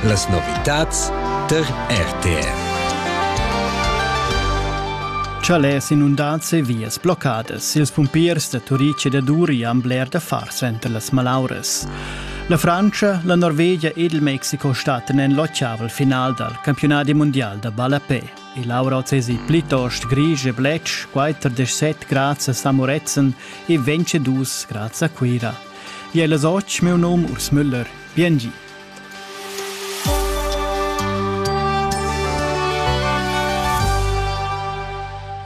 Las novitads tar RTR. Chalès inundads e vias bloccadas. Ils pumpiers da Turic e da Duri han bler da far center las malauras. La Frantscha, la Norvegia ed il Mexico stattan en l'ottaval final dal campionadi mondial da ballapè. E l'aura oz plitost grisch e bletsch, 47 grads a Samoretzen e 22 grads a Cuira. Jella soc meu nom Urs Müller. Biengi.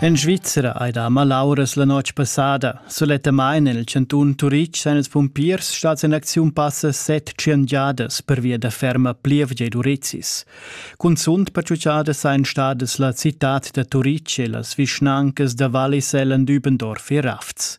En Svizzera hai da malauras la notg passada. Sulettamain en il cantun Turitg san ils pumpiers stads en acziun passa set giadas per via da ferma plievgia ed urizis. Cunzunt pertutgada sain stadas la citad da Turitg e las vischnancas da Wallis, Ellen, Dübendorf e Rafts.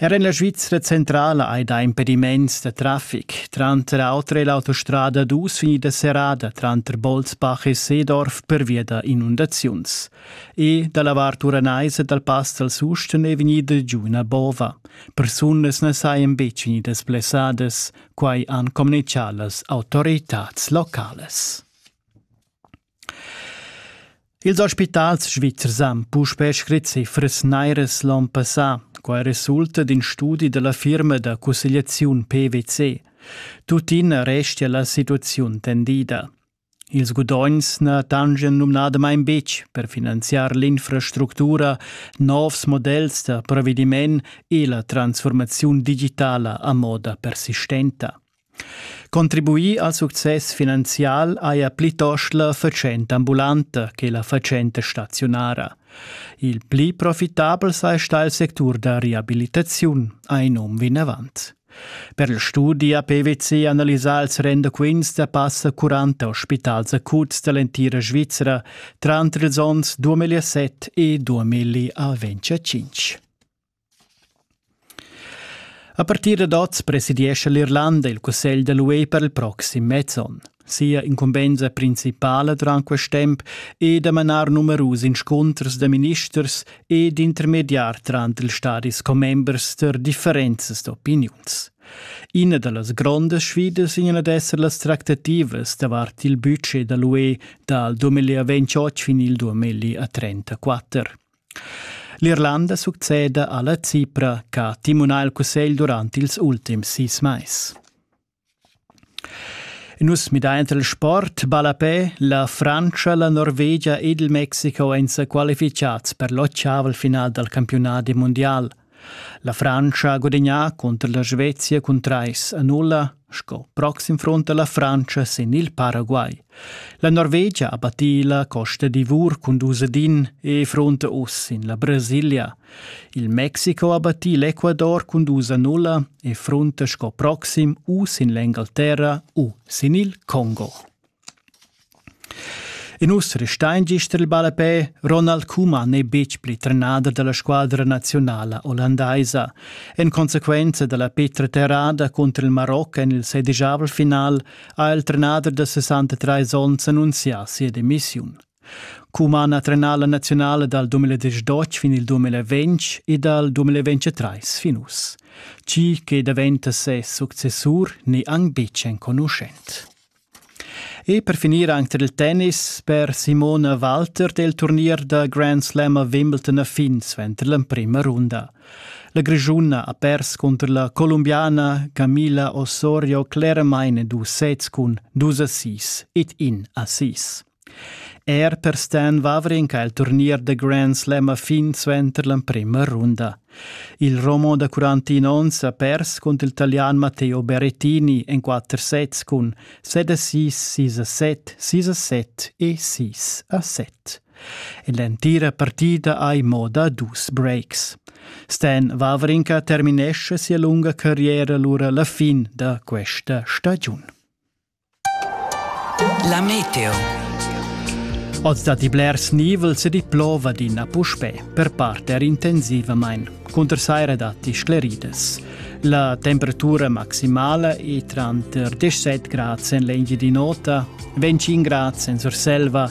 Er en la Svizra centrala hai dà impediments da traffic, tranter auter è l'autostrada dus vegnida serrada tranter Bolzbach e Seedorf pervia da inundaziuns. E da la vart uranaisa dal pass dal Susten è vegnida giu ina bova. Persunas na sajan betg vegnidas blessadas, quai han communitgà las autoritads localas. Ils ospitals svizzers han puspè scrit cifras nairas l'onn passà. Quai resulta d'in studi da la firma da cussegliaziun PwC. Tuttina restia la situaziun tendida. Ils gudogns na tangian numnadamain betg per finanziar l'infrastructura, novs models da provediment e la transformaziun digitala a moda persistenta. Contribuir al success finanzial haja plitost la fatschenta ambulanta che la fatschenta staziunara. Il pli profitabel saja stà il sectur da reabilitaziun, ha in um vinavant. Per il studi ha PwC analisà ils rendaquints da passa 40 ospitals acuts da l'entira Svizra tranter ils onns 2007 e 2005. A partir dad oz presidiescha l'Irlanda il cussegl da l'UE per il proxim mez onn. Sia incumbensa principala durant quest temp è da manar numerus inscunters da ministers e d'intermediar tranter ils stadis commembers da differentas opiniuns. Ina da las grondas sfidas vegn ad esser las tractativas davart il budget da l'UE dal 2028 fin il 2034. L'Irlanda succeda alla Cipra ch'ha timunà il cussegl durant ils ultims sis mais. Nus midain il sport ballapè. La Frantscha, la Norvegia ed il Mexico èn sa qualifichads per l'ottavel final dal campiunadi mundial. La Frantscha ha gudagnà cunter la Svezia cun trais a nulla, sco proxim front da la Frantscha sin il Paraguay. La Norvegia ha battì la Costa d'Ivor cun dus ad in e fronta uss sin la Brasilia. Il Mexico ha battì l'Ecuador cun dus a nulla e fronta sco proxim u sin l'Engalterra u sin il Congo. In uss restain gist il ballapè Ronald Koeman n'è betg pli trenader da la squadra naziunala ollandaisa. En consequenza da la petra terrada cunter il Maroc en il sedigiavel final ha il trenader da 63 onns annunzià sia demissiun. Koeman ha trenà la naziunala dal 2018 fin il 2020 e dal 2023 fin uss. Chi che daventa ses successur n'è anc betg enconuschent. E per finir anc tar il tennis per Simona Walter del turnier da Grand Slam a Wimbledon a fin suenter l'emprima runda. La Grischuna ha pers cunter la Colombiana Camila Osorio cleramain en dus sets cun dus assist ed in assist. Er per Stan Wawrinck ha il turnier da Grand Slam a fin suenter l'emprima runda. Il Romo da 41 onns ha pers cunter il Italian Matteo Berrettini en quatter sets cun 7 a 6, 6 a 7, 6 a 7 e 6 a 7. En l'entira partida hai mo da dus breaks. Stan Wawrinka terminesce sia lunga carriera lura la fin da questa stagiun. La meteo. Oz datti blers nivels ed i plova adina puspè, per part er intensivamain. Cunter saira datti scleridas. La temperatura maximala è tranter 17 grad en l'Engiadin'Ota, 25 grad en Surselva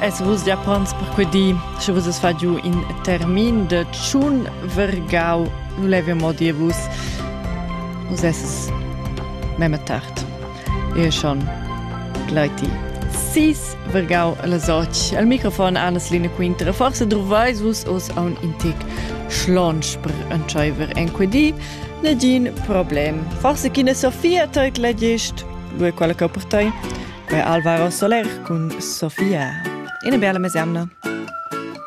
es vus Japans per que di, sche vus es fa giù in termin de tschun vergau, nu leve mo dir vus, vus es memme tard. E schon gleiti sis vergau las och. Al microfon Anas Line Quinter, forse druvais vus os a un intic schlonsch per entscheiver en quedi, negin problem. Forse chi ne Sofia teit legist, lu è quella che per tai, Quei Alvaro Soler cun Sofia. Ina bella mesemna.